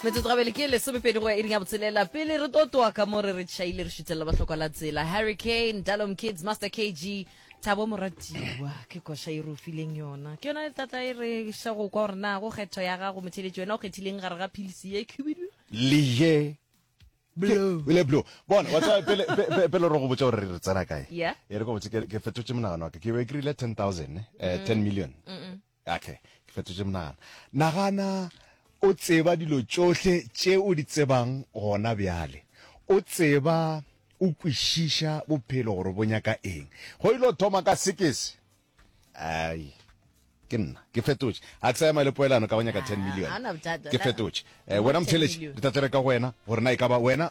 metsotso gabele ke lesomepedi go ya iring ya botshelela pele re totoa ka mo re re tšhaile re šuthelela bahlokwa la tsela harry kane dalom kids master kg thabo moratiwa ke koša e rufileng yona ke yona tlatla e re xa go kwa gore na go kgetho ya gago motheletši wena o kgethileng gare ga philisi ye khubidu leye le blo bona wa tsaya pele pe- pele re go botsa gore re tsena kae Yeah. e re go botse ke ke fetotse monagano wa ka ke be ke rile 10000 eh 10 million Okay, ke fetotše monagano. Nagana o tseba dilo tšohle tše o di tsebang gona bjale. O tseba, o kwešiša bophelo gore bo nyaka eng. Ge o ilo thoma ka sekese, ai, ke nna, ke fetotše. A ke sa ema le poelano ka go nyaka ten million. Ke fetotše. Eh, wena motheletši, re tla tlere ka go wena gore na e ka ba wena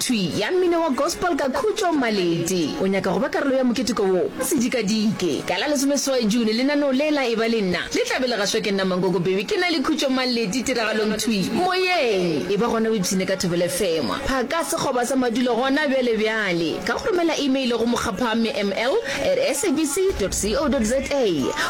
Thwi ya mmino wa gospel ka Khutšo Maleti. O nyaka go ba karolo ya moketeko wo? Se dikadike! Ka la lesomeseswai June, lenaneo le la Eba le Nna le tla be le gašwa ke nna Mankoko Bebe ke na le Khutšo Maleti tiragalong Thwi Moyeng. E ba gona o ipshine ka Thobela FM. Phaka sekgoba sa madulo gona bjale bjale ka go romela email go mokgaphamme ml at sabc dot co dot za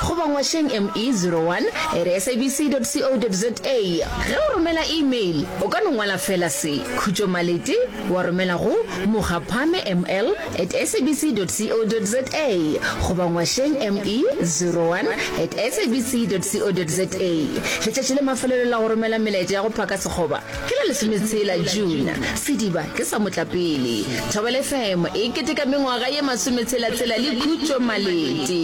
goba ngwašeng ME zero one at sabc dot co dot za. Ge o romela email, o ka no ngwala feela se. Khutšo Malete wa romela go Mokgapame ML at sabc dot co dot za goba Ngwasheng ME 01 at sabc dot co dot za. Letšatši la mafelelo la go romela melaetša ya go phaka sekgoba ke la lesometshela June. Sediba ke sa motlapele. Thobela FM e keteka mengwaga ye masometshela-tshela le Khutšo Malete.